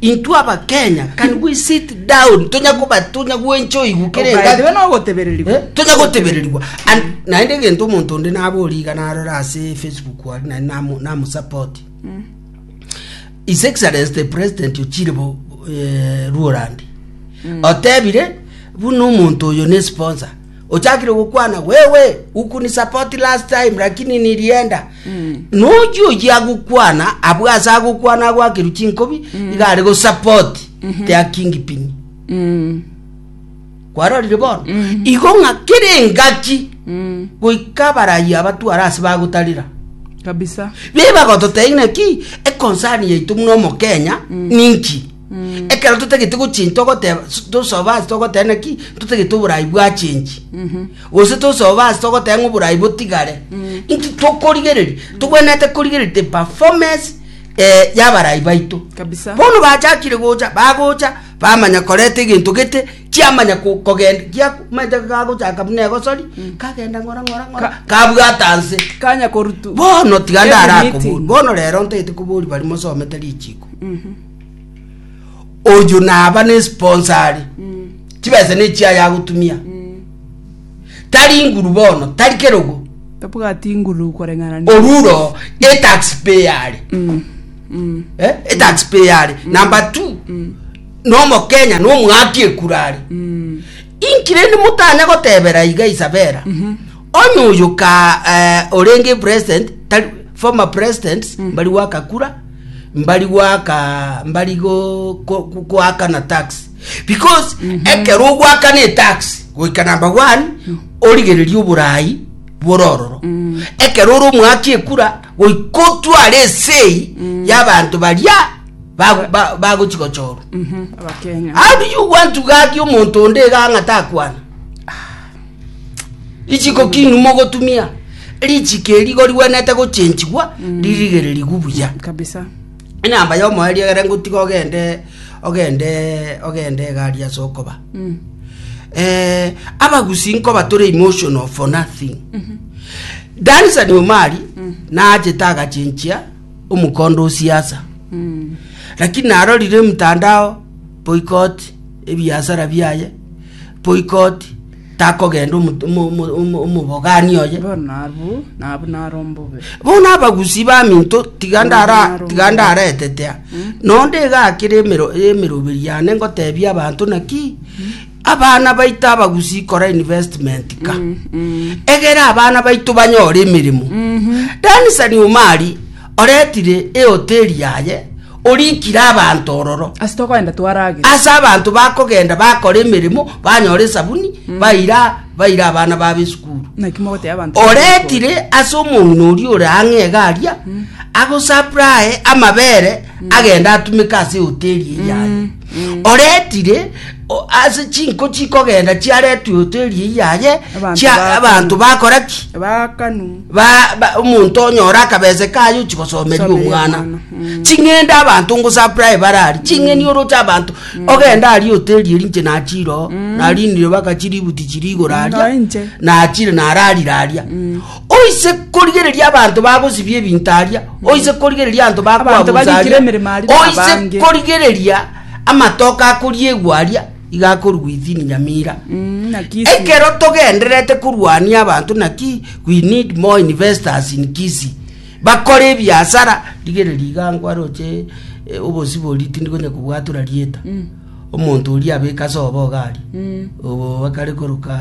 Intwe Abakenya, can we sit down? Tonya koba tonya gwencha oigwe kere Ogaetwe engaki. nogotebererigwa. Eh, tonya gotebererigwa And naende egento omonto onde nabori iga narora ase facebook aria naende namu- namusupport his excellence the president ochire bo eh, ruorandi otebire buna omonto oyo ne sponsor Ochakire gokwana, Wewe ukunisapoti last time, lakini nilienda. Nochi ochi agokwana, abwo ase agokwana agwakerwe chinkobi, iga are gosapoti their kingpin. Mm. kwarorire bono igo ng'a kere engaki goika abarayi abatwara ase bagotarera Kabisa. be bagototebia ng'a ki ekonsani yaito buna omokenya ninki Ekero totagete gochenji togoteba tosoba ase togoteba naki totagete oborai bwachenji. Gose tosoba ase togoteba ng'a oborai botigare. Inki tokorigereria? Togwenerete korigereria the performance eh, y'abarai baito. Kabisa. Bono bachakire gocha, bagocha, bamanya koreta egento gete, chiamanya ko- kogenda, gia maete gagochaka buna egosori, kagenda ng'ora ng'ora ng'ora, Ka- kabwata nse. Kanya korutu. Bono tiga Every ndara meeting. akobori, bono rero ntagete kobori bari mosomete richiko. oyo naba ne sponsor are chibesa ne chiaye agotumia tari nguru bono tari kerogo tabwati nguru koreng'ana ne- oruro e taxpayer are Eh, e taxpayer are number two nomokenya nomwaki ekura are inkirende motanya gotebera iga isabera onye oyo ka eh, orenge president tari former president mbari gwakakura mbari goaka mbari goakana tax because mhm. ekero ogwakana etax goika namba one mhm. origereria oborai borororo mhm. ekero ore omwaki ekura goika otware esei y'abantu baria bagochigochorwa how do you want to gaki omonto onde iga ang'ata akwana Richiko ki inwe mogotumia? Richiko erigo rigwenete gochenchigwa ririgererigwe buya. kabisa Enamba ya omoyo eriegere ngotiga ogende ogende ogende egari ase okoba. Mm. Eh, abagusi nkoba tore emotional for nothing. Danisa ni omari naachete agachenchia omokondo o siasa. Mm. Lakini narorire mtandao boycott ebiasara biaye Boikoti takogenda omo- omo- omo- omo- omobogani oye. Bono abwo nabwo naro ombobe. Bono abagusi baminto tiga ndara Naro. tiga ndaretetea nonde egakire emero emeroberi yane ngotebia abanto naki abana baito abagusi kora investment ka egere abana baito banyore emeremo danisani omari Oretire eoteri yaye, orikire abanto ororo. Ase tokoenda twaragere. Ase abanto bakogenda bakora emeremo, banyora esabuni, baira baira abana babo esukuru. Naki mogoteeba abanto. Oretire ase omong'ina oria ore ang'e iga aria, agosaprae amabere, agende atumeke ase eoteri eye yaye. oretire o- ase chinko chikogenda chiaretwe hoteli eye yaye Abanto chia- bakanu. abanto bakora ki bakanu Ba- ba- omonto onyora akabese kaye ochigosomeria Somera omwana omwana, mm. ching'ende abanto ngosaprae barari ching'eni oroche abanto ogenda ari hoteli eri nche nachiro narinire baka chiributi chirigoro Naye aria nche. nachire nararire aria Oise korigereria abanto bagosibia ebinto aria, oise korigereria abanto Abanto bakwabusa bagikire aria, emeremo aria oise nabange. korigereria amatoke akoriegwa aria, iga akorwa Gwithini Nyamira. Mm, na Kisii. Ekero togendererete korwania abanto naki we need more investors in Kisii bakore ebiasara rigereria iga nkwaroche eh, obosibori tindi konya kobwatora rieta omonto oria abeke ase oboga aria, obo bakare koroka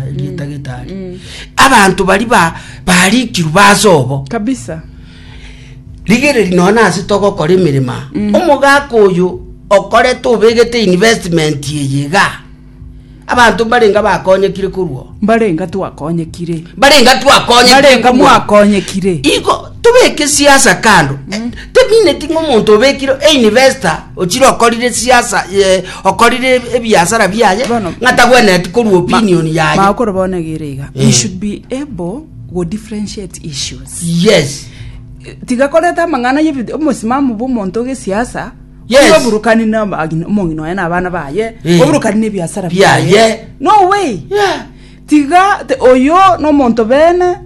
erieta getari. Abanto baria ba- barikirwe ase obo, kabisa rigereria nonya nase togokora emeremo aa. omogaka oyo okorete obegete investment eye igaa. Abanto mbarenga bakonyekire korwa oo. Mbarenga twakonyekire. Mbarenga twakonyekire. Mbarenga mwakonyekire. Igo tobeke siasa kando. Mm. Temineti ng'omonto obekire einvesta ochire okorire siasa eh, okorire ebiasara biaye ng'atagwenereti korwa opinion yaye. Makoro bona gere iga. We eh. should be able go differentiate issues. Yes. Tiga koreta amang'ana y'ebi omosimamo bw'omonto gesiasa Yes. Oburukani na abagina- omong'ina oye na abana baye, Eh. oburukani na ebiasara Biaye. biaye. No way. Yeah. Tiga te- oyo nomonto bene,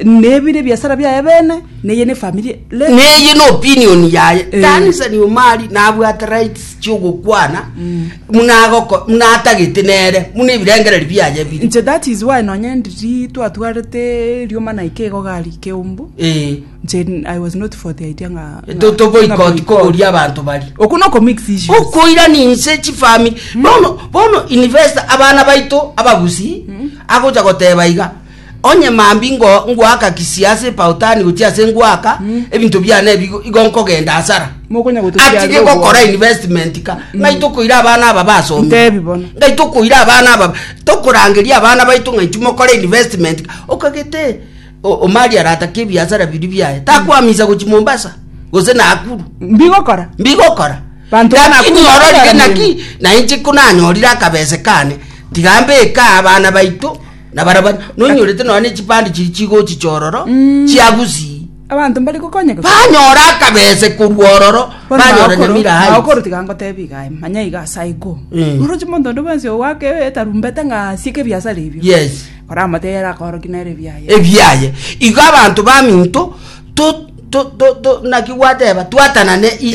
nebire ebiasara biaye bene, neye ne efamiri. Le- neye no opinion yaye Eh. tanisani omari nabwate rights chiogokwana munagoko munatagete nere muna ebirengereri biaye biri Nche that is why nonye ndiri twatwarete riomana ike igo gari keumbu. Eh. Jane, I was not for the idea nga Etoto boikoti kogoria abanto baria. Oko noko mix issues. Okoira ninse chifami. Hmm. Bono bono invest abana baito abagusi hmm. agocha goteba iga. Onye mambi ngo ngwaka kisiase pautani gochia se ngwaka hmm. ebinto biana ebigo igonko genda asara. Mokonya goto kiaro. Ati geko kora investment ka. Ngai to koira abana aba baso. Ndebi bono. Ngai to koira abana aba. To korangeria abana baito ngai chimo kora investment. Okagete. Okay, Omari aratake ebiasara biria biaye, takwamisa gochia Mombasa gose Nakuru. Mbigokora? Mbigokora. Banto ba Nakuru Lakini ororire bakonyora naki mirimo. nainche ko nanyorire akabese kane tiga mbeke aa abana baito na barabani nonyorete nonya ne chipande chiri chigochi chororo chia Gusii. Abanto mbari gokonyeka. Banyora akabese korwa ororo Bono banyora magokoro- Nyamira Heights. magokoro tiga ngotebi igae manya iga ase aye ko Mm. oroche monto onde bwensi ogwake etarumbete ng'a asieke ebiasara ebio Yes. Oramoteere akoorokia nere ebiaye. ebiaye. Igo abanto baminto to, to, to, to, naki gwateba twatanane Ee,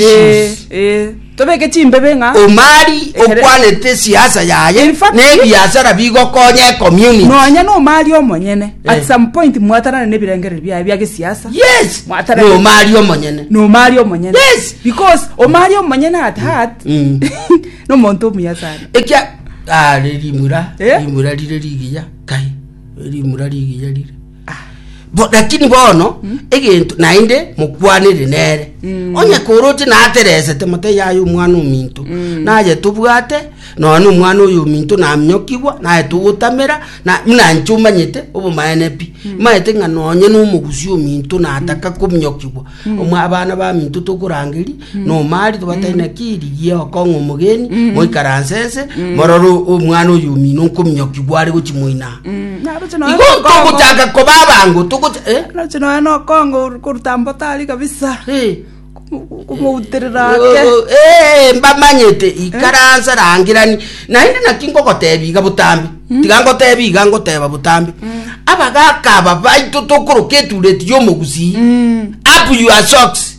issues. ee. Tobeke chimbebe ng'a. Omari Ekere- okwanete esiasa yaye In fact- ne ebiasara bigokonya ecommunity. Nonya nomari omonyene. Eh. At some point mwatanane nebirengereri biaye bia gesiasa. Yes, Mwatanane. nomari omonyene. Nomari omonyene. Yes. Because omari omonyene at heart. Mm. Nomonto omuya sana. Ekia are rimura Eh? rimura rire rigiya kai rimura rigiya rire Bo- lakini bono egento naende mokwanire nere Mm. onye koroche nateresete mote yaye omwana ominto Mm. naye tobwate nonye omwana oyo ominto naminyokigwa naye togotamera na- buna inche omanyete obomaene pi maete ng'a nonye nomogusi ominto nataka kominyokigwa Omwa- abana baminto tokorangeri nomari tobatari na kiri gioko ng'a omogeni moikaranse ense morore omwana oyo omino nkominyokigwa are gochimoina igo togochaka koba abango togocha eh? nache nonya nokongo koruta mbotari kabisa Eh. komouterera ake Eh, eh, mbamanyete ikaransa rangirani naende naki ngogotebi iga botambe tiga ngotebi iga ngoteba botambe abagaka aba baito tokoroka etureti yomogusii up your socks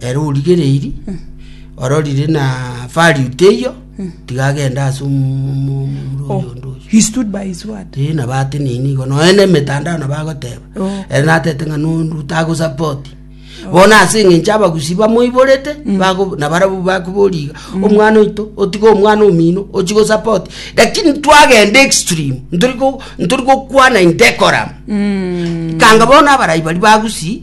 Ere origereiri ororire na value teiyo tiga agende ase omu- omu- omurori Oh, onde oyo he stood by his word. Eh, na bate nini igo noe na emetandao na bagoteba Oh. ere natete ng'a nondu tagosapoti bono ase eng'encho abagusi bamoiborete bago- na barabwo bakoboriga omwana oito otiga omwana omino ochi gosapoti lakini twagenda extreme ntori go- ntori gokwana in decorum kanga bono abarai bari bagusi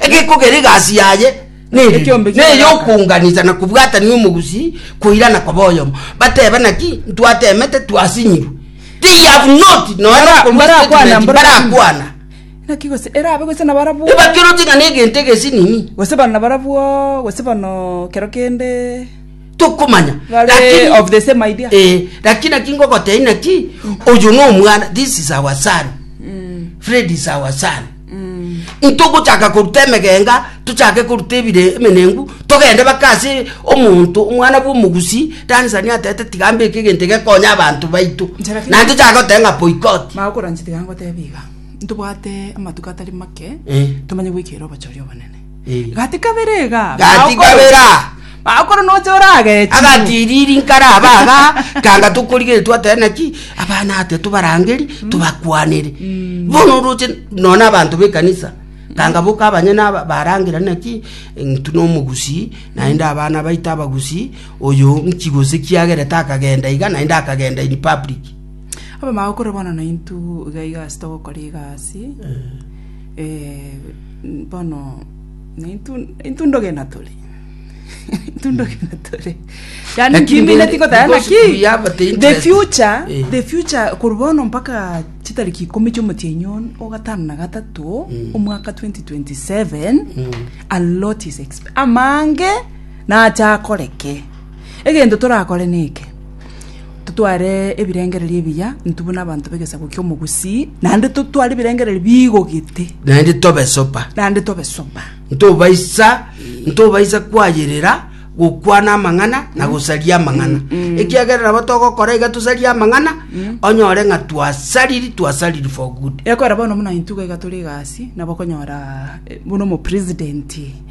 egekogera egasi yaye nere, Ekiombe na ki'amagaka. eyokounganisa na kobwatanigwa omogusi koirana koba oyomo, bateba naki ntwatemete twasinyirwe. They have not nonya Bara- okorwa barakwana statement, mbora- barakwana. Naki gose erabe gose nabarabwo. Ebakeroti ng'a negento egesinini. Gose bano nabarabwo, gose bano kero kende. tokomanya Bare Lakini- of the same idea. Eh, lakini naki ngogotebia naki oyo nomwana this is our son fred is our son Intogochaka koruta emegenga, tochake koruta ebire emenengu, togende mpaka ase omonto, omwana bw'omogusi, Dan Sania atebete, tiga mbeke egento gekonye abanto baito. Inche lakini- Naende tochake goteba ng'a boycott. Magokoranche tiga ngotebe iga, ntobwate amatuko atari make, Eh. tomanye goikera obochori obonene. Gati kabere iga. Gati kabere aa. Makoro noche oragechi. Agatiriri nkara aba aga, tanga tokorigeri twatera naki, abana ate tobarangeri, mm. tobakwanere. Mm. Bono oroche nona abanto bekanisa. Tanga boka abanyene barangera naki, ntu nomogusi, naende abana baita abagusi, oyo nkigose kiagerete akagenda iga, naende akagenda in public. Aba magokora bono naintu iga iga asitogokora egasi. Eh. Bono intwe ndogenda tore, intwe ndogenda tore. Yaani Lakini kimi then, neti kotaya because naki, we have the the interest. future, Eh. the future korwa bono mpaka chitariki ikomi chi'omotienyi ono o gatano na gatato omwaka 2027 a lot is exp- amange nacha akoreke egento torakore neke Totware ebirengererio ebiya, intwe buna abanto b'egesaku ki'omogusii, naende totware ebirengererio bigogete, naende tobe sopa naende tobe soba. ntobaisa ntobaisa kwayerera gokwana amang'ana na gosaria amang'ana ekiagera nabo togokora iga tosarie amang'ana onyore ng'a twasariri twasariri for good Ekora bono buna intwe iga tore egasi, nabo okonyora eh, buna omopresident.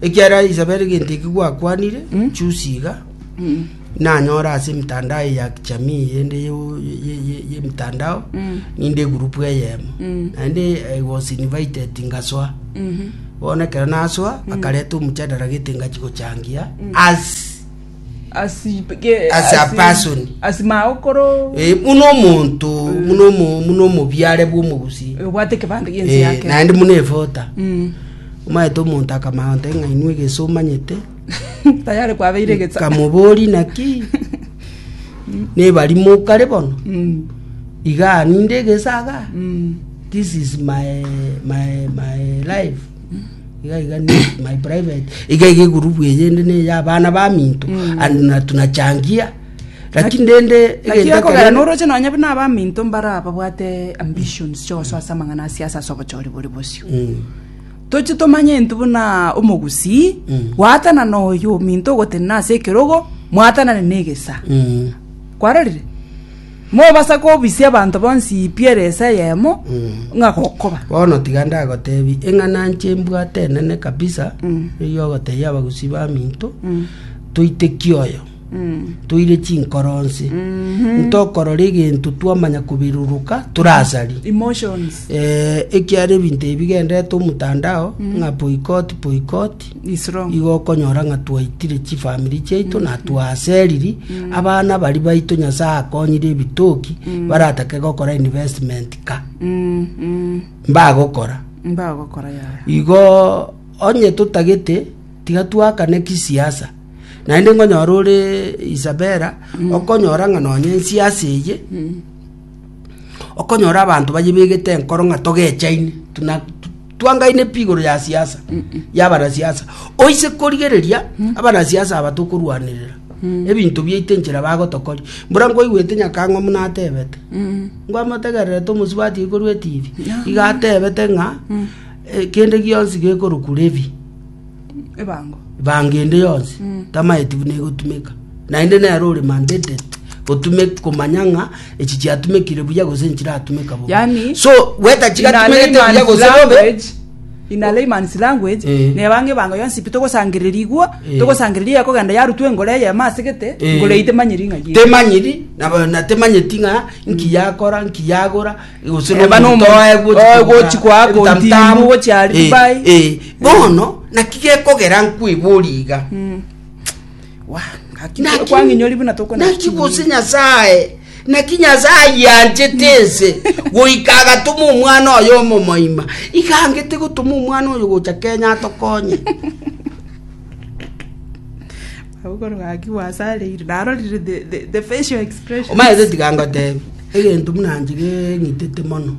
Ekiagera Isabeli gento eki gwakwanire, chusi iga, nanyore ase emitandao eye ya kijamii yende yo- ye- ye- yemitandao, ninde egurupu eyemo. Naende I was invited ngasoa. Bono ekero nasoa, bakareta omochandara gete ngachi gochangia as Ase Abasoni. ase maokoro Eh, buna omonto buna omo- buna omobiare bwa omogusi obwate ekebande giense Eh, yake naende muna efota Mm. omaete omonto akamaonte ng'a inwe egese omanyete tayari kwabeire egetsa kamobori naki nebari mokare bono Mm, iga ninde egesa aga mm. this is my my my life iga iga ni my private iga iga egurubu eye ende ne ya abana baminto and na tunachangia lakini rende egento lakini ekero- akogera noroche nonye buna abaminto mbara babwate ambitions chionso ase amang'ana a siasa ase obochori bore bosio Mm. toche tomanye ntu buna omogusii Mm. gwaatana na oyo ominto ogotenena ase ekerogo mwatanane na egesa Mm. kwarorire Mobasa kobisia abanto bonsi pi ere esa eyemo, ng'a gokoba. Bono tiga ndagoteebie eng'ana nche mbwate enene kabisa, eyio ogotebia abagusii baminto, Toitekie oyo, toire chinkoro onsi, ntokorora egento twamanya koberuruka tore asari. Emotions. Eh, ekiara ebinto ebi bigenderete omotandao, ng'a boycott, boycott, Igo okonyora ng'a twaitire chifamiri chiaito na twaseriri abana baria baito Nyasae akonyire ebitoki baratake gokora investment ka mbagokora. Mbagokora yaya. Igo onye totagete tiga twakane kisiasa naende nkonyora ore Isabela okonyora ng'a nonye ensiasa eye okonyora abanto bayebegete enkoro ng'a togechaine tuna- tu- Twangaine pi igoro ya siasa yabanasiasa? Oise korigereria abanasiasa aba tokorwanerera ebinto biaito enchera bagotokoria. Mbura nkoigwete nyakang'omu natebete ngwa motegererete omosubati ekorwa etibi. Iga atebete ng'a eh, kende gionsi gekorokwa Levi. ebango. Ebango ende yonsi Mm. tamaeti buna egotumeka naende nero ore mandated gotume komanya ng'a echi chiatumekire buya gose nchiratumeka bobe Yani, so gweta in a chigatumegete buya layman's gose bobe language, in a layman's language, Eh. nebanga ebango yonsi pi togosangereria igwo Eh. togosangereria eyakogenda yarutwa engoro eye emasegete Eh. engoro eye temanyiri ng'a yire. temanyiri nabo- na temanyeti ng'a nki yakora nki yagora gose Eba no nomonto oye ogochi oye kogora gochi kwa ako ebitamtamu, ntimu, gochi ari eh, Dubai. eh. bono naki gekogera nkwibori iga Wa, naki- Naki- kwang'inyori buna tokona naki chinguru. gose nyasaye naki nyasaye yanchete ense goika agatoma omwana oyo omomoima igangete gotoma omwana oyo gocha kenya atokonye Omanyete tiga ngotebi, egento buna inche keng'itete mono,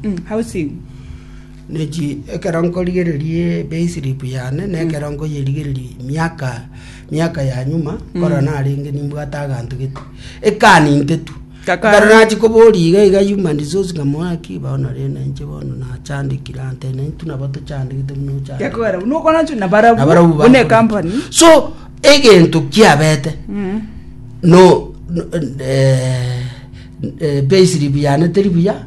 ne chi ekero nkorigereria epay slip yane, na ekero nkoyerigereria miaka, miaka ya nyuma, korwa narenge nimbwate aganto gete, ekaninteti. Ekero nachia koboria iga iga Yuma Ndisoosi nkamoa ki, bao nari na inche bono nachandekire ante na intwe nabo tochandegete buna ochandegete. Na barabwo Nabarabwo buna bakore. company. So egento kiabete Mm. no no- eh, eh, payslip yane teri buya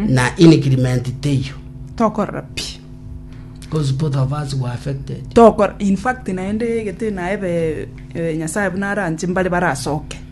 na increment teiyo Tokorora pi. because both of us were affected Tokor in fact naende egete naebe eh, Nyasaye buna aranche mbare barasoke.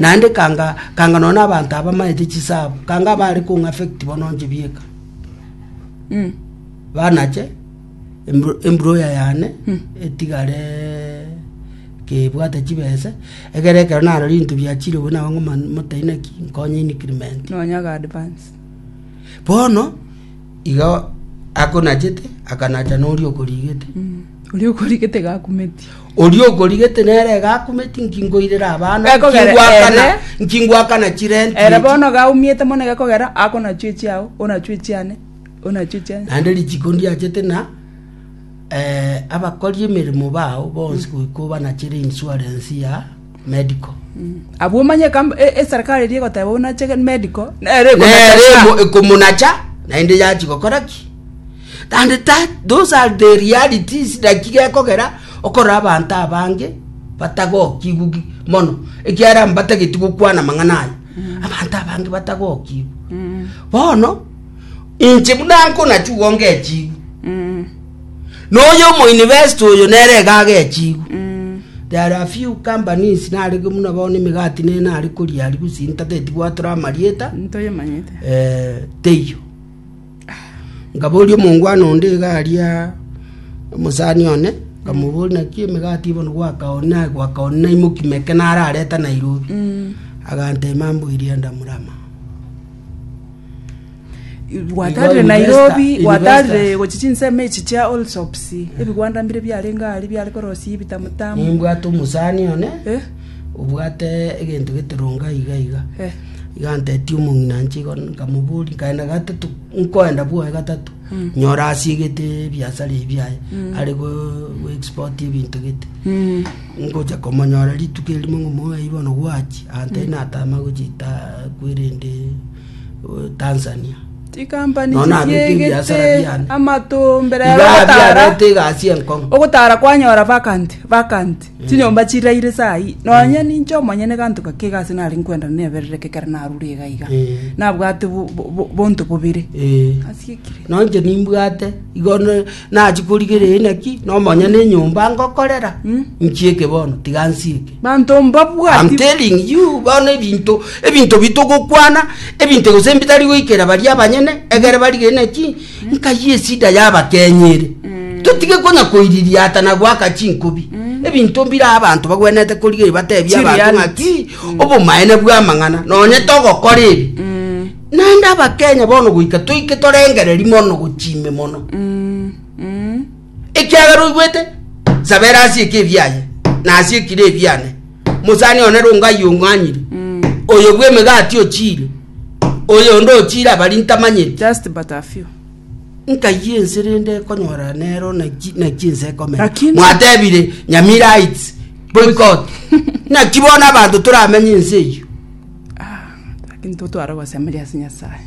naende kanga kanga nonya abanto abamaete chisabu kanga abare kong'a affect bono inche bieka Mm. banache embro- embroya yane etigare kebwate chibese egere ekero naro rinto biachire obwo nabo ng'oma motaina ki nkonye increment Nonyaga advance. bono Igo akonachete akanacha noria okorigete. oria okorigete gakumeti Oria okorigete nere gakumeti nkingoirera abana Gakogera nkingwakana ere. nkingwakana chirenti ere echi. bono gaumiete mono gekogera akonachwa echiao onachwa echiane onachwa echiane naende richiko ndiachete na eh, abakori emeremo bao bonsi goika obanachere insurance ya medical. Abwo omanye ekam- e- eserikari eria egoteba buna cheke medical nere nere ekonacha emo- ekomonacha naende yachi gokora ki and that those are the realities naki gekogera okorora abanto abange batagokigwa ki- mono ekiara mbatageti gokwana amang'ana aya abanto abange batagokigwa bono inche buna nkonachugo ngechigwa Noyo omoinivesti oyo nere egaga echigwe. There are few companies narege buna bao nemegati ne nare koria aria gose intageti gwatore amarieta ntoyemanyete eh, teiyo ngaboria omongwana onde iga aria omosani one nkamobori naki emegati bono gwakaoni naye gwakaoni naimoki meke narareta nairobi agantema mbu eria ndamurama gwatarire nairobi gwatarire gochi chinsemo echi chia allsops ebigwanda mbire biarenge aria biare korosia ebitamutamu nimbwate omosani one Eh? obwate egento getoronga iga iga Eh. iga antetie omong'ina nche igo nkamobori nkaenda gatatu nkoenda bwoye gatatu nyora asiegete ebiasara ebi biaye are go- go export ebinto gete Mm. ngocha komonyora rituko erimo ng'o moyo bono gwachi antebi natama gochita kwerende Tanzania. Chikampani Nono abeke chiegete ebiasara biane. amato mbere ya Iga ogotara biarete egasi enkong'u. ogotara kwanyora vacant vacant chinyomba chiraire sai nonye ninche omonyene eganto gake egasi nare nkwenda neberereke ekero narure iga iga Eh. nabwate bo- bo- bo- bonto bobere Eh. Asikire. Nonche nimbwate igo ne- Nachie korigereria inaki nomonyene enyomba ngokorera, nchieke bono, tiga nsieke. Manto I'm mbabwati telling you bono ebinto ebinto bitogokwana ebinto gose mbitari goikera baria abanyene egere barige naki nkai esida y'abakenyi ere totige konya koiriria ata na goaka chinkobi ebinto mbire abanto bagwenerete korigereria batebie abanto Chiriality. ng'aki obomaene bw'amang'ana nonye togokora ebi Naende Abakenya bono goika toike torengereri mono gochia ime mono. Ekiagera oigwete, sabera ase eke ebiaye, na ase ekire ebiane. Mosani one rongo ayio ong'anyire, oyo bw'emegati ochiire, oyonde ochiire abari ntamanyeti. Just but a few. Nkayia ense rende ekonyora nero naki naki ense ekomera. Lakini- Mwatebire Nyamira Heights, boycott. Naki bono abanto toramenye ense eyio. Nintotware gosemeria ase Nyasae.